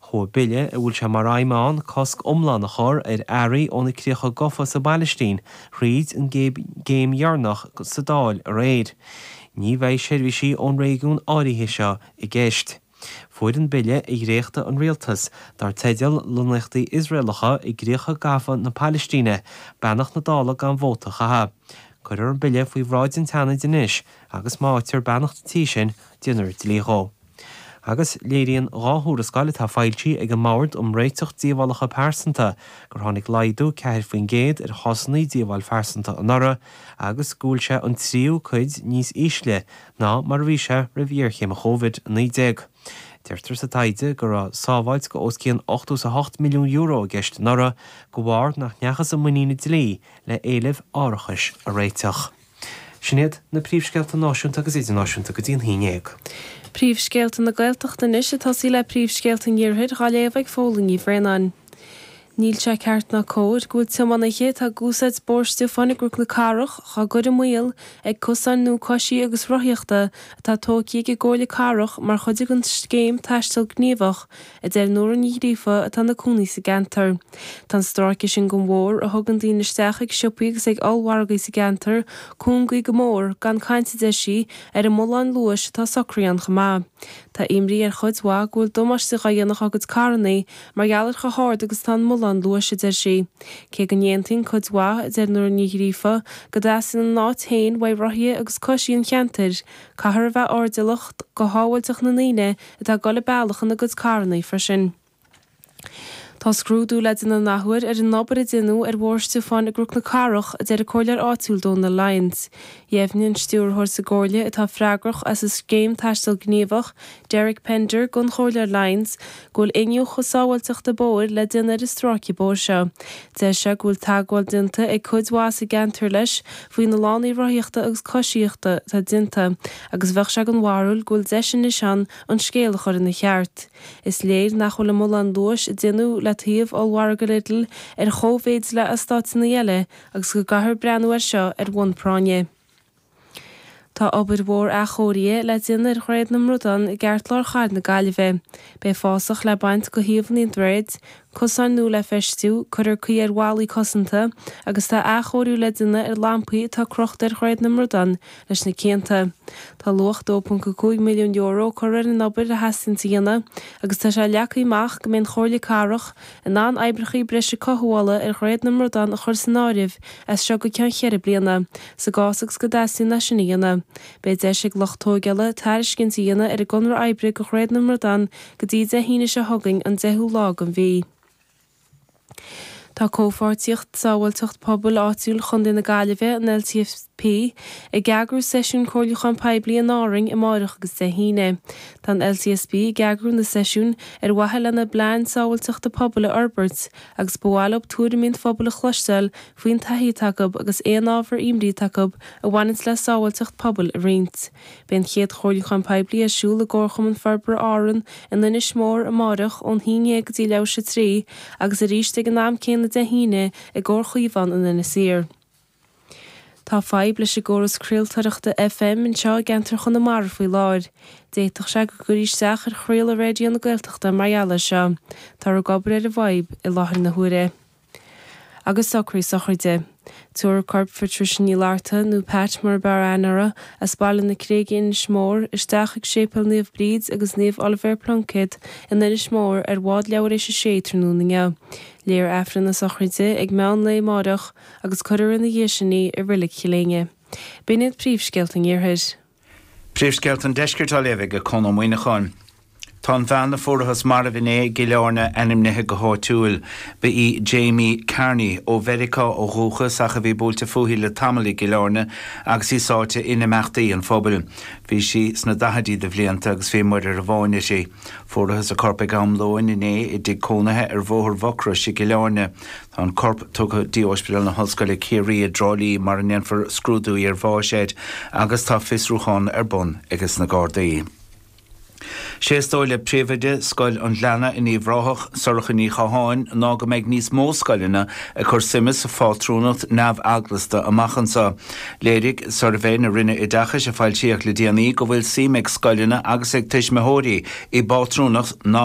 Chuaigh bille a bhfuil sé mar aidhm aige cosc iomlán a chur ar earraí ó na críocha gafa sa bPailistín thríd an gcéim dheireanach sa Dáil aréir. Ní bheidh seirbhísí ón réigiún áirithe seo i gceist. Fuair an bille a dhréacht an Rialtas, dar teideal Lonnaíochtaí Iosraelacha i gCríocha Gafa na Pailistíne, beannacht na Dála gan vóta a chaitheamh. Cuirfear an bille faoi bhráid an tSeanaid anois agus má fhaightear beannacht an Tí sin, déanfar dlí dhó. Agus léiríonn dhá thuarascáil atá foilsithe ag an mBord um Réiteach Díobhálacha Pearsanta gur tháinig laghdú ceathar faoin gcéad ar chásanna díobháil phearsanta anuraidh agus go bhfuil sé an tríú cuid níos ísle ná mar a bhí sé roimh ghéarchéim Covid-19. Deirtear sa taighde go raibh sábháilt de os cionn ochtó is a hocht milliún euro i gceist anuraidh de bharr nach ndeachthas i muinín an dlí le héilimh árachais a réiteach. Sin iad na príomhscéalta náisiúnta agus idirnáisiúnta go dtí a naoi déag. Príomhscéalta na Gaeltachta anois ag tosaí le príomhscéalta an Iarthair dhá léamh ag Eibhlín Ní Bhraonáin. Níl sé ceart ná cóir go bhfuil tiománaithe atá ag úsáid Bóthar Stiofáin i gCnoc na Cathrach dhá gcur i mbaol ag cosáin nua coisithe agus rothaíochta atá tógtha ag an gComhairle Cathrach mar chuid den scéim Taisteal Gníomhach a deir Nóra Ní Ghríofa atá ina cónaí sa gceantar. Tá an stráice sin de bhóthar, a thugann daoine isteach ag siopaí agus ag ollmhargaí sa gceantar, cúngaithe go mór, gan caint a deir sí, ar an mbullán luais atá socraithe ann chomh maith. Tá imní ar chuid mhaith go bhfuil damáiste dhá dhéanamh dá gcuid carrannaí mar gheall ar chomh hard agus atá an mbullán luais, a deir sí. Cé go n-aontaíonn cuid mhaith, a deir Nóra Ní Ghríofa, go dteastaíonn a n-áit féin ó rothaithe agus coisithe an cheantair, caithfear a bheith airdeallach do shábháilteacht na ndaoine atá ag dul an bealach ina gcuid carrannaí freisin. Tá scrúdú le déanamh an athuair ar an obair a déanadh ar Bhóthar Stiofáin i gCnoc na Cathrach, a deir an Comhairleoir áitiúil Dónal Lyons. Dheimhnigh an Stiúrthóir sa gComhairle atá freagrach as an Scéim Taisteal Gníomhach, Derek Pender, don Chomhairleoir Lyons go bhfuil iniúchadh sábháilteachta bóthair le déanamh ar an stráice bóthair seo. Deir sé go bhfuil teagmháil déanta ag cuid mhaith sa gceantar leis faoi na lánaí rothaíochta agus coisíochta atá déanta, agus bheadh sé den bharúil go bhfuil deis anois ann an scéal a chur ina cheart. Is léir nach bhfuil an bullán luais atá déanta le taobh ollmhargadh Lidl ar chóimhéid le eastáiteanna eile agus go gcaithfear breathnú air seo ar bhonn práinne. Tá obair mhór athchóirithe le déanamh ar Dhroichead na mBradán i gceartlár chathair na Gaillimhe. Beidh fásach le baint de thaobhanna an droichid, Cosáin nua le feistiú, cuirfear caoi ar bhallaí cosanta agus tá athchóiriú le déanamh ar lampaí atá crochta ar Dhroichead na mBradán leis na cianta. Tá luach €2.5 milliún curtha ar an obair a theastaíonns a dhéanamh agus tá sé leagtha amach go mbeidh an Chomhairle Cathrach in ann oibreacha breise cothabhála ar Dhroichead na mBradán a chur san áireamh as seo go ceann cheithre bliana, sa gcás agus go dteastaíonn sé sin a dhéanamh. Beidh deis ag lucht tógála tairiscint a dhéanamh ar an gconradh oibre do Dhroichead na mBradán go dtí Dé hAoine seo chugainn an 10ú lá den mhí. Tá Comhpháirtíocht Sábháilteacht Pobail Áitiúil Chontae na Gaillimhe, an LCSP, ag eagrú seisiún comhairliúcháin poiblí in Árainn amáireach agus Dé hAoine. Tá an LCSP ag eagrú na seisiúin ar mhaithe lena bplean sábháilteachta pobail a fhorbairt agus ba mhaith leo tuairimí an phobail a chloisteáil faoin taithí atá acu agus aon ábhar imní atá acu a bhaineanns le sábháilteacht pobail a roinnt. Beidh an chéad chomhairliúchán poiblí ar siúl i gComharchumann Forbartha Árann in Inis Mór amárach ón haon déag go dtí leathuair tar éis 3 agus arís ag an am céanna Dé hAoine i gComhar Chaomhán in Inis Oírr. Tá fadhb leis an gcóras craoltóireachta FM anseo i gceantar Chonamara faoi láthair. D'fhéadfadh sé go gcuirfí isteach ar chraoladh Raidió na Gaeltachta mar gheall air seo. Táthar ag obair ar an bhfadhb i láthair na huaire. agus socruithe sochraide. Tabharfar corp Phatricia Ní Fhlatharta, nó Pat mar ab fhearr aithne uirthi, as Baile na Creige, Inis Mór, isteach chuig Séipéal Naomh Bríd agus Naomh Oilibhéar Pluincéad in Inis Mór ar bhád leathuair tar éis a sé tráthnóna inniu. Léifear Aifreann na sochraide ag meán lae amáireach agus cuirfear ina dhiaidh sin í i Reilig Chill Éinne. B'in iad príomhscéalta an iarthair. Príomhscéalta an Deiscirt á léamh ag Conn Ó Muíneacháin. Tá an bhean a fuarthas marbh inné i gCill Airne ainmnithe go háitiúil. Ba í Jamie Carney, ó Mheiriceá ó dhúchas ach a bhí buailte fúithi le tamall i gCill Airne agus í sáite in imeachtaí an phobail. Bhí sí sna daichidí de bhlianta agus bhí muirear amháin uirthi. Fuarthas a corp ag am lóin inné i dtigh cónaithe ar Bhóthar Mhucrois i gCill Airne. Tá an corp tugtha go dtí Ospidéal na hOllscoile Ciarraí i dTrá Lí mar a ndéanfar scrúdú iarbháis air agus tá fiosrúchán ar bun ag na Gardaí. Sé is dóigh le Príomhoide Scoil an Ghleanna in Uíbh Ráthach, Sorcha Ní Chatháin, ná go mbeidh níos mó scoileanna ag cur suime sa phátrúnacht neamheaglasta amach anseo. Léirigh suirbhé na Roinne Oideachais a foilsíodh le déanaí go bhfuil suim ag scoileanna agus ag tuismitheoirí i bpátrúnacht na